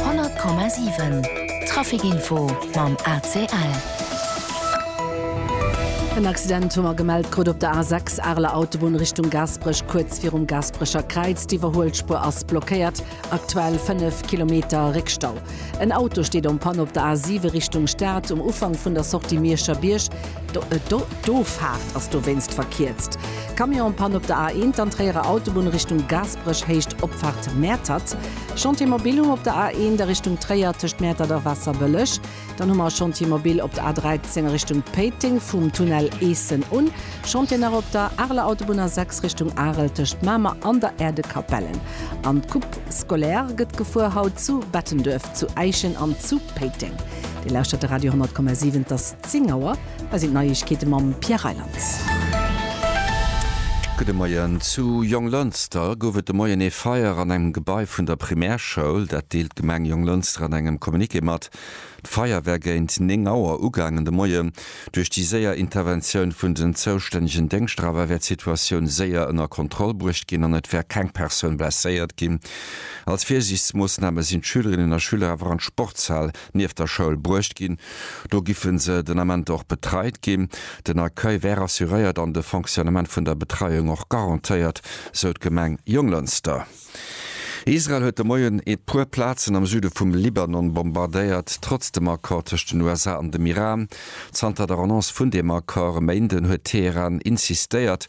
Honnert Komma siwen, Trafikinfo mam ACL. En Accident hu mer gemellt krut op der A6, Areler Autobunn Richtung Gaasperech. Kuerz virum Gaasperecher Kräiz, d'Iwwerhuelspuer ass blockéiert, aktuell 5 Kilometer Réckstau. En Auto steet en panne op der A7 Richtung Stad, um Ufank vun der Sortie Mierscher Bierg. D'Offahrt ass dowéinst verkierzt. Camion en panne op der A1, an Tréierer Autobunn Richtung Gaasperech. Bréch Héicht Opfahrt Mäertert, Chantier Mobilum op der A1 a Richtung Tréier tëscht Mäertert a Waasserbëlleg. Dann hu mer Chantier Mobil op der A13 a Richtung Péiteng vum Tunnel Eessen un. Chantier nach op der Areler Autobunn A6 Richtung Arel tëscht Mamer an der Aire de Capellen. An d'Coupe scolaire gëtt gefuer, haut zu Bettenduerf, zu Äischen an zu Péiteng. Dir lauschtert de Radio 100,7, dass. 10 Auer, hei sinn d'Neiegkeete mam Pierre Reyland. Gudde Moien. Zu Jonglënster gouf et de Moien ee Feier an engem Gebai vun der Primärschoul. Dat deelt d'Gemeng Jonglënster an engem Communiqué mat. D'Feier wär géint 9 Auer ugaangen de Moien. Duerch déi séier Interventioun vun den zoustännegen Déngschter awer wär d'Situatioun séier ënner Kontroll bruecht ginn an et wär keng Persoun blesséiert ginn. Als Virsiichtsmoossname sinn d'Schülerinnen a Schüler awer an d'Sportshal nieft der Schoul bruecht ginn. Do giffen se den Ament och betreit ginn. Den Accueil wär assuréiert an de Fonctionnement vun der Betreiung och garantéiert, sou d'Gemeng Jonglënster. Israel huet de Moien e puer Plazen am Süde vum Libanon bombardéiert, trotz dem Accord tëscht den USA an dem Iran. Zanter der Annonce vun deem Accord e Méinden huet Teheran insistéiert,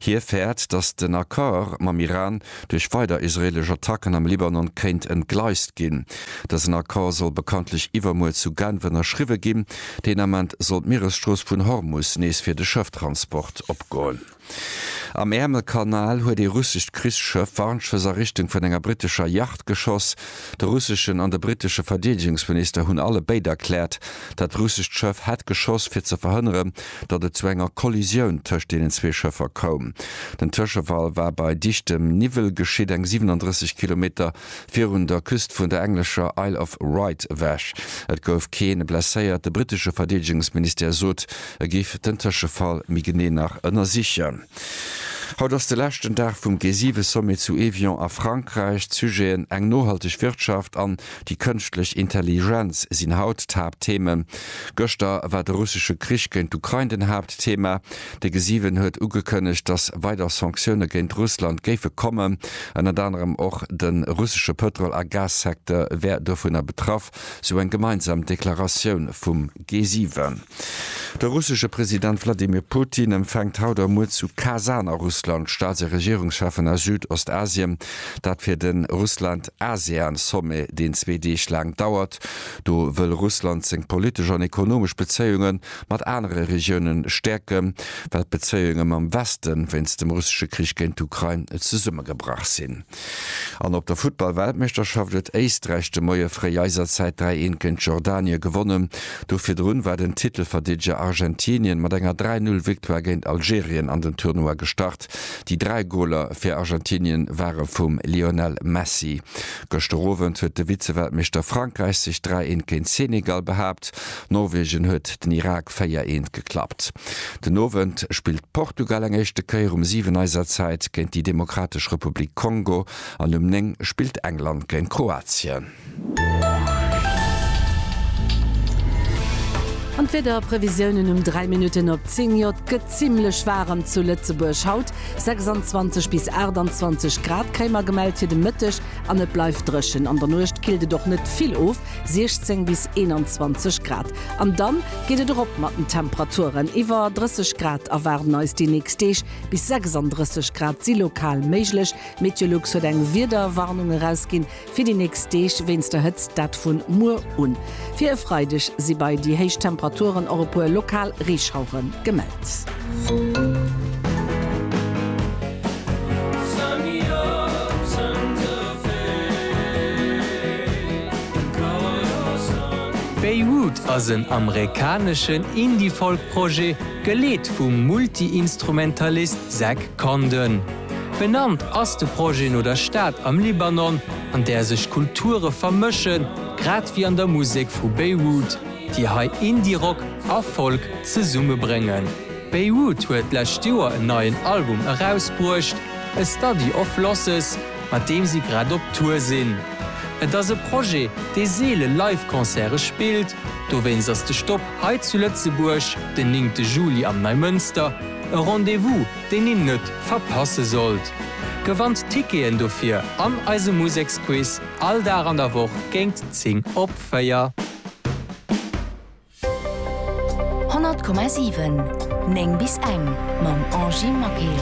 Hie fäert, datt den Accord mam Iran duerch weider israeelesch Attacken am Libanon kéint entgleist ginn. Dësen Accord soll bekanntlech iwwermuer zu Genf ënnerschriwwe ginn. Deen Ament soll d'Mieresstrooss vun Hormus nees fir de Schëfftransport opgoen. Am Äermelkanal huet ee russescht Krichsschëff Warnschëss a Richtung vun enger brittescher Yacht geschoss. De russeschen an de brittesche Verdeedegungsminister hunn alle béid erkläert, dat russescht Schëff hätt geschoss, fir ze verhënneren, datt et zu enger Kollisioun tëscht deenen zwee Schëffer koum. Den Tëschefall war bei dichtem Niwwel geschitt, eng 37 Kilometer virun der Küst vun der englescher Isle of Wight ewech. Et gouf kee blesséiert. De brittesche Verdeedegungsministère sot, e géif den Tëschefall méi genee nach ënnersichen. Haut ass de leschten Dag vum G7-Sommet zu Évian a Frankräich. D'Sujeten eng nohalteg Wirtschaft an déi kënschtlech Intelligenz sinn haut d'Haapttheemen. Gëschter war de russesche Krich géint d'Ukrain den Haapttheema. De G7 huet ugekënnegt, datt weider Sanktioune géint Russland géife kommen. Ënnert anerem och de russesche Pëtrol a Gassecteur wär dovunner betraff, sou eng gemeinsam Deklaratioun vum G7. De russesche President Wladimir Putin empfänkt haut a muer zu Kasan a Russland d'Staats a Regierungscheffen aus Südostasien. Dat fir de Russland-ASEAN-Sommet, deen zwee Deeg laang dauert. Do wëll Russland seng politesch an ekonomesch Bezéiunge mat anere Regiounen stäerken, well d'Bezéiunge mam Weste wéinst dem russesche Krich géint d'Ukrain zesummegebrach sinn. An op der Futtball-Weltmeeschterschaft huet Éisträich de Moie fréi eiser Zäit 3, 1 géint Jordanie gewonnen. D'Woch virdrun war den Titelverdeedeger Argentinien mat enger 3, 0 Victoire géint Algerien an den Tournoi gestart. Déi 3 Goler fir Argentinien ware vum Lionel Messi. Gëschter Owend huet de Vize-Weltmeeschter Frankräich sech 3, 1 géint Senegal behaapt. Norwegen huet den Irak 4 Eent geklappt. Den Owend spillt Portugal eng éischte Kéier um 7 eiser Zäit géint déi Demokratesch Republik Kongo an um 9 spillt England géint Kroatien. An d'Wiederprevisiounen um 3 Minutten op 10 Jo et gëtt zimmlech waarem zu Lëtzebuerg haut, 26 bis 28 Grad kréie mer gemellt fir de Mëtteg an et bleift dréchen. An der Nuecht killt et och net vill of. 16 bis 21 Grad. An dann geet et erop mat den Temperaturen, iwwer 30 Grad erwaarden eis déi nächst Deeg, bis 36 Grad si lokal méiglech. Meteolux huet eng Wiederwarnung erausginn fir déi nächst Deeg wéinst der Hëtzt, dat vun muer un. Fir e Freideg si bei déi héich Temperaturen och e puer lokal Reeschauere gemellt. Beirut ass en amerikaneschen Indie-Folk-Projet, geleet vum Multi-Instrumentalist Zach Condon. Benannt ass de Projet no der Stad am Libanon, an där sech Kulture vermëschen, grad wéi an der Musek vu Beirut. déi hei Indie-Rock a Folk zesumme bréngen. Beirut huet d'lescht Joer en neien Album erausbruecht, A Study of Losses, mat deem si grad op Tour sinn. Et ass e Projet, dee seele Live-Concerte spillt, dowéinst ass de Stop hei zu Lëtzebuerg den néngte Juli am Neimënster e Rendez-vous, deen een net verpasse sollt. Gewannt d'Ticketen dofir an eisem Museksquiz all Dag an der Woch géint 10 op. Féier. 100,7 9 bis eng mam Angie Maquil.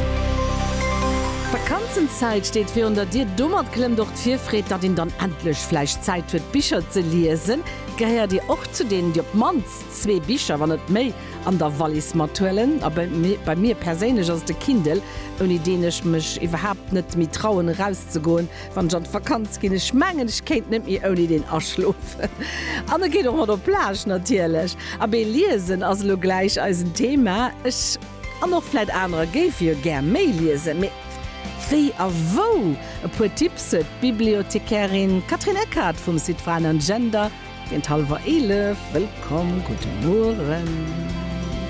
D'Vakanzenzäit steet virun der Dier. Domat klëmmt och d'Virfreed. Datt een dann endlech vläicht Zäit huet d'Bicher ze liesen. Gehéiert Dir och zu deenen, déi op d'mannst zwee Bicher, wann net méi, an der Wallis mathuelen? A bei mir perséinlech ass et de Kindle, ouni deen ech mech iwwerhaapt net méi trauen erauszegoen. Wann ech an d'Vakanz ginn, ech mengen ech kéint net méi ouni deen aschlofen. An e geet och mat op d'Plage natierlech. Abee, liesen ass elo gläich eisen Thema. Ech, an och vläit anerer, géife jo gär méi liesen. Mee wéi a wou? E puer Tipps huet d'Bibliothekärin Catherine Eckhardt vum Site Frauen an Gender géint hallwer 11. Wëllkomm, gudde Mueren.